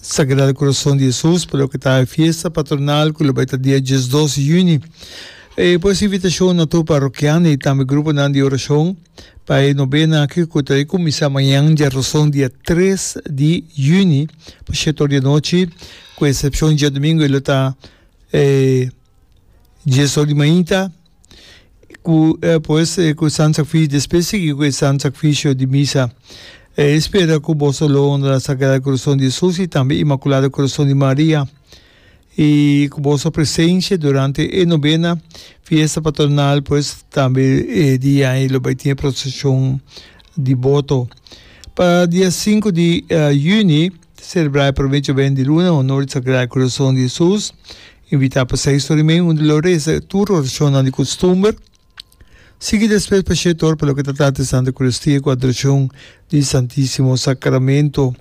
Sagrado Corazon di Jesus pa loke ta e fiesta patronal cu lo bay ta dia dies dos di juni. E pues invitacion na tur parrokianan y tambe gruponan di oracion pa e novena aki cu ta cuminsa mañan dja roson dia tres di juni pa shete or di anochi cu excepcion djadomingo y lo ta dies or di mainta. ku e pues ku San Sakfisho despues sigui ku e San Sakfisho di misa e spera ku boso lo honra Sagrado Corazon di Jesus i tambe Inmakulado Corazon di Maria i ku boso presensia durante e nobena fiesta patronal pues tambe e dia ei lo bai tin e prosesion di boto pa dia sinku di Juni celebra e prome joben di luna honor di Sagrado Corazon di Jesus. Invitá pa seis tur i mei unda lo reza tur orashonnan di kustumber. Sigui despues pa shete ora pa loke ta trata di Santa Eukaristiaku Adorashon di Santisimo Sakramentu.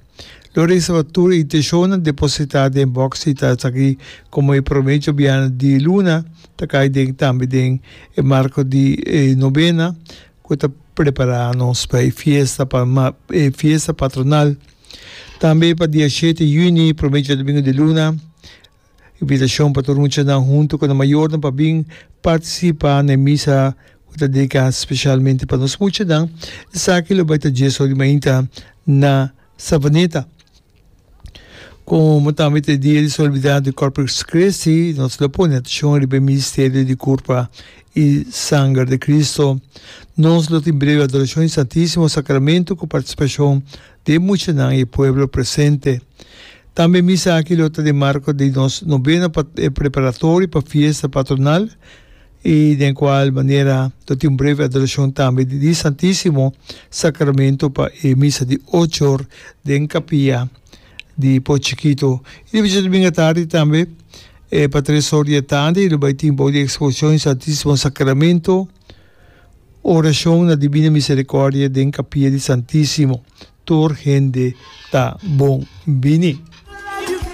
Lo reza pa tur e inteshonnan depositá den bòks i ta esaki komo e promé djobiana di luna ta kai den tambe den e marko di e nobena ku ta prepará nos pa e fiesta pa e fiesta patronal. Tambe pa dia shete yuni, promé djodomingu di luna, Invitashon pa tur muchanan huntu ku nan mayornan pa bin partisipá na e misa ku ta dediká spesialmente pa nos muchanan, esaki lo bai ta dies or di mainta na Savaneta. Komo tambe ta e dia di solibidat di Corpus Christi, nos lo pone atashon riba e misterio di kurpa i sanger di Kristu. Nos lo tin brevi adorashon di Santísimo Sakramentu ku partisipashon Di e muchanan i e pueblo presente. Tambe misa aki lo ta di marco di nos novena preparatorio pa fiesta patronal i den cual manera lo tin un breve adoracion tambe di e Santisimo Sacramento pa e misa di ocho or den capilla di Poe Chikito. I di bishos domingo atardi tambe pa tres or di atardi lo bay tin bou di exposición e Santisimo Sacramento. Orashon na Dibina Miserikòrdia den Kapia di Santísimo, Tur hende ta bon bini.